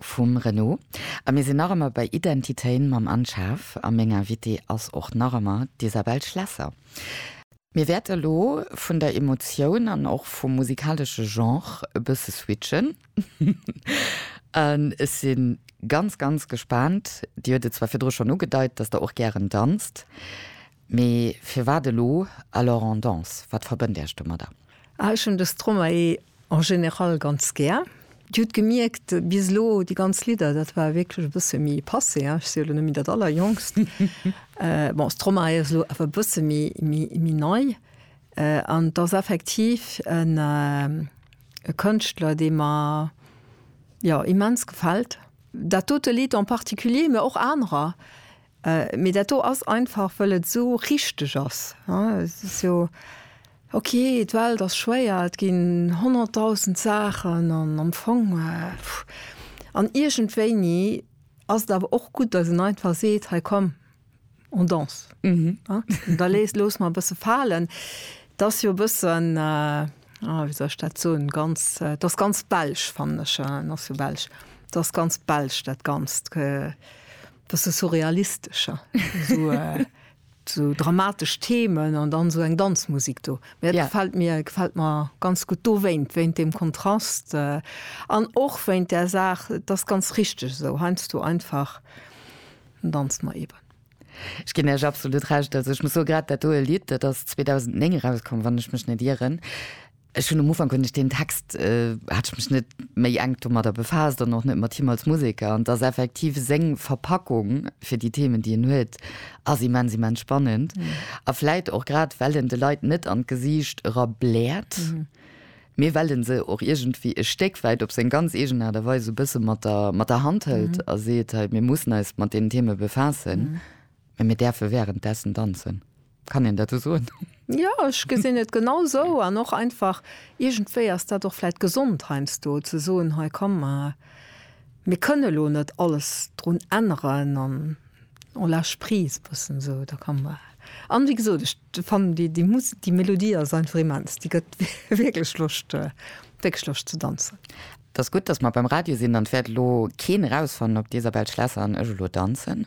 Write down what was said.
Vum Renaud. A mir sinn nach ëmmer bei Identitéin mam Anne Schaaf a meng Invitée ass och nach ëmmer d'Isabelle Schlesser. Mir wäerte elo vun der Emotioun an och vum musikalesche Genre e bësse switchen an ech si ganz, ganz gespaant. Dir huet et zwar virdru schonn ugedeit, dass Der och gären danzt. Mee firwat elo Alors on danse? Wat verbënnt Iech domadder? Ah, ech hunn de Stromae en général ganz gär. Dir hutt gemierkt, bis elo déi ganz Lidder, dat war wierklech e bësse méi passé, hein, ech si jo elo net méi dat Allerjongst. Bon, Stromae ass elo awer e bësse méi nei. An et ass effektiv e Kënschtler, dee mer, jo, immens gefält. Dat dote Lidd en particulier, mä och anerer, Mee dat do ass einfach wëll et esou richteg ass. Et ass jo ok, d'Welt ass schwéier, et ginn honnertdausend Saachen an am Fong an iergendwéini ass et awer och gutt, datt een einfach seet, hei komm on danse, da loosse mer e bësse falen. Et ass jo e bëssen, wéi soll ech dat soen, ganz, et ass ganz belsch fannen ech, et ass jo belsch, et ass ganz belsch dat Ganzt. Dass se surrealistescher, sou dramatesch Themen an dann esou eng Danzmusik do. Mä dat gefält mir, gefält mer ganz gutt dowéint, wéint deem Kontrast an och wéint där Saach, et ass ganz richteg esou heiansdo einfach, dann danzt mer eeben. Ech ginn Iech absolut Recht. Also ech muss soen, grad dat doe Lidd, dat ass 2009 erauskomm, wann ech mech net ieren. Ech hunn um Ufank, hunn ech deen Text, hat ech mech net méi enk domadder befaasst an och net mat him als Museker. An et ass effektiv seng Verpackung fir déi Themen, déi en huet, ass immens, immens spannend. A vläit och grad, well en de Leit net an d'Gesiicht era bläert, mee well e se och iergendwéi e Stéck wäit op seng ganz eegen Aart a Weis esou e bësse mat der, mat der Hand hëlt a seet, hei, mir mussen eis mat deenen Themen befaassen, mä mir däerfe wärenddessen danzen. Kann een dat esou soen? Jo, ech gesinn et genau esou. An och einfach, iergendwéi ass dat och vläit gesond heiansdo ze soen, hei komm, mir kënne elo net alles drun änneren an on lâche prise e bëssen esou. Da kann mer, an wéi gesot, ech fannen déi, déi Musek, déi Melodie ass einfach immens. Déi gëtt wierklech Loscht, wierklech Loscht ze danzen. Et ass gutt, dass mer beim Radio sinn, dann wäert elo keen erausfannen, ob d'Isabelle Schlesser an ech elo danzen.